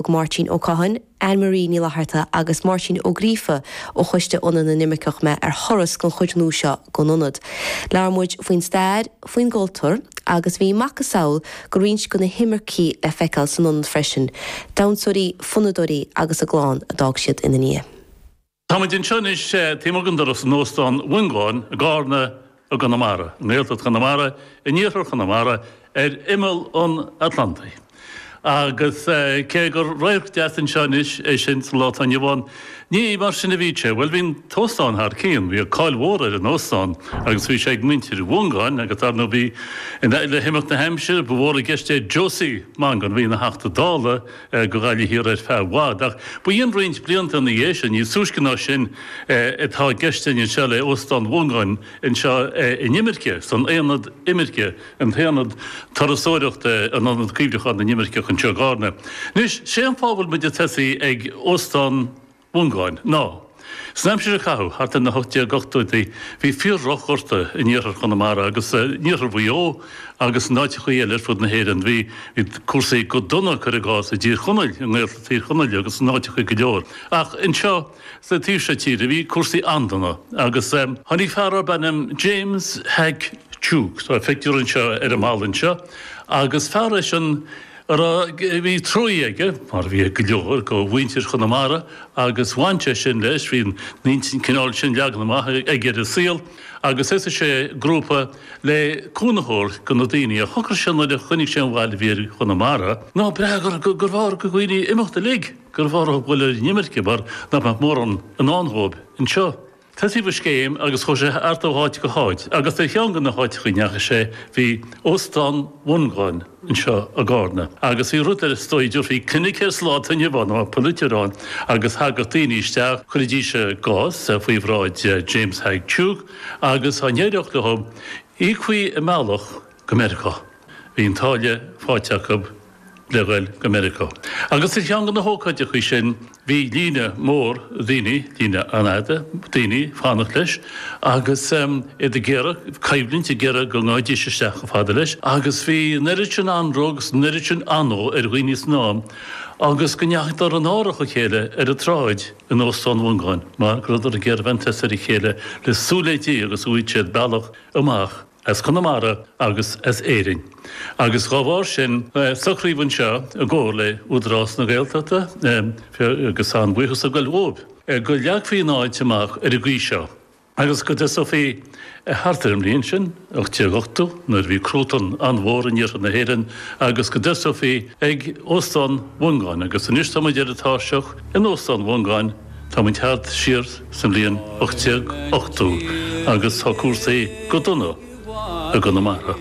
Thug Máirtín Ó Catháin, Anne Marie Ní Fhlatharta agus Máirtín Ó Gríofa ó Choiste Ionad na nImirceach mé ar thuras don chuid nua seo gon Ionad. Labhair muid faoin stair, faoin gcultúr agus bhí macasamhail go roinnt go na himircigh le feiceáil san Ionad freisin, damhsóirí, fonnadóirí agus a gclann a d'fhág siad ina ndiaidh. Táimid anseo anois taobh amuigh den doras in Óstán Mhiongáin i gCarna i gConamara, i nGaeltacht Chonamara, in Iarthar Chonamara, ar imeall an Atlantaigh. Agus cé gur radharc deas anseo anois é sin sa lá atá inniu ann, ní mar sin a bhíodh sé. Bhuel, bhí an t-óstán thar cionn, bhíodh cáil mhór ar an óstán agus bhí sé ag muintir Mhiongáin agus dar ndóigh bhí, le himeacht na haimsire, ba mhór i gceist é Josie Mongan, a bhí ina Theachta Dála, go Gaillimh Thiar ar feadh i bhfad, ach ba dh'in roinnt blianta ina dhiaidh sin, níos túisce ná sin, atá i gceist linn anseo le Óstán Mhongáin anseo in imirce, san Aonad Imirce, an tAonad Turasóireachta, an Ionad Cuimhneacháin na nImirceach anseo i gCárna. Anois, sé an fáth a bhfuil muid ag tosaí ag Óstán. Mhongáin, ná san aimsir a caitheadh thart ar na hocht déag ochtóidí bhí fíor-dhroch-ghorta in iarthar Chonamara agus in iarthar Mhaigh Eo agus in áiteachaí eile ar fud na hÉireann. Bhí cúrsaí go dona, cuir i gcás, i dTír Chonaill, i nGaeltacht Thír Chonaill agus in áiteachaí go leor. Ach anseo sa taobh seo tíre bhí cúrsaí an-dona agus. Tháinig fear darb ainm James Hack Tuke, tá a phictiúr anseo ar an mballa anseo, agus fear eisean, Ara, bhí trua aige, mar a bhí ag go leor de mhuintir Chonamara, agus bhain sé sin leis, bhí an intinn cineál sin leagtha amach aige ar an saol, agus thosaigh sé grúpa le cúnamh a thabhairt do na daoine. Ach shocair sé nuair a chonaic sé an bhail a bhí ar Chonamara, ná b'fhearr gurbh fhearr go na daoine imeacht uilig, gurbh fhearr a ghoil ar an imirce, mar nach mbeadh mórán i ndán dhóibh anseo. Thosaigh sé an scéim agus chuaigh sé thart ó áit go háit agus ar cheann go na háiteacha a ndeachaigh sé bhí Óstán Mhongáin anseo i gCárna agus bhí rud eile is dóigh a dtiúrfaí clinic air sa lá atá inniu ann mar a bheadh ag polaiteoir ann agus thagadh daoine isteach, chuiridís a gcás faoi bhráid James Hack Tuke agus á n-éireodh leo, íocfaí a mbealach. go Meiriceá. Bhí an táille faighte acu le dhoil go Meiriceá. Agus ar cheann de na hócáideachaí sin bhí líne mhór daoine, líne an-fhada daoine fanacht leis agus iad ag iarraidh coimhlint, ag iarraidh go ngabhaidís isteach chomh fada leis. Agus bhí an oiread sin anró agus an oiread sin anó ar dhaoine san am agus go ndeachadar in árach a chéile ar an tsráid in Óstán Mhongáin mar go rabhadar ag iarraidh ag baint an tosach dá chéile le súil le Dia go bhfaighidís bealach amach as Conamara agus as Éirinn agus dhá bharr sin socraíodh anseo i gcomhar le Údarás na Gaeltachta agus an bhuíon anseo sa gCoill Dhubh go leagfaí an áit amach ar an gcaoi seo agus go dtosófaí thart ar an mbliain sin 1880 nuair a bhí cruatan an-mhór in iarthar na hÉireann agus go dtosófaí ag Óstán Mhongáin agus anois táimid ar an tairseach in Óstán Mhongáin. Táimid tagtha siar sa mbliain 1880 agus tá cúrsaí go dona i gConamara.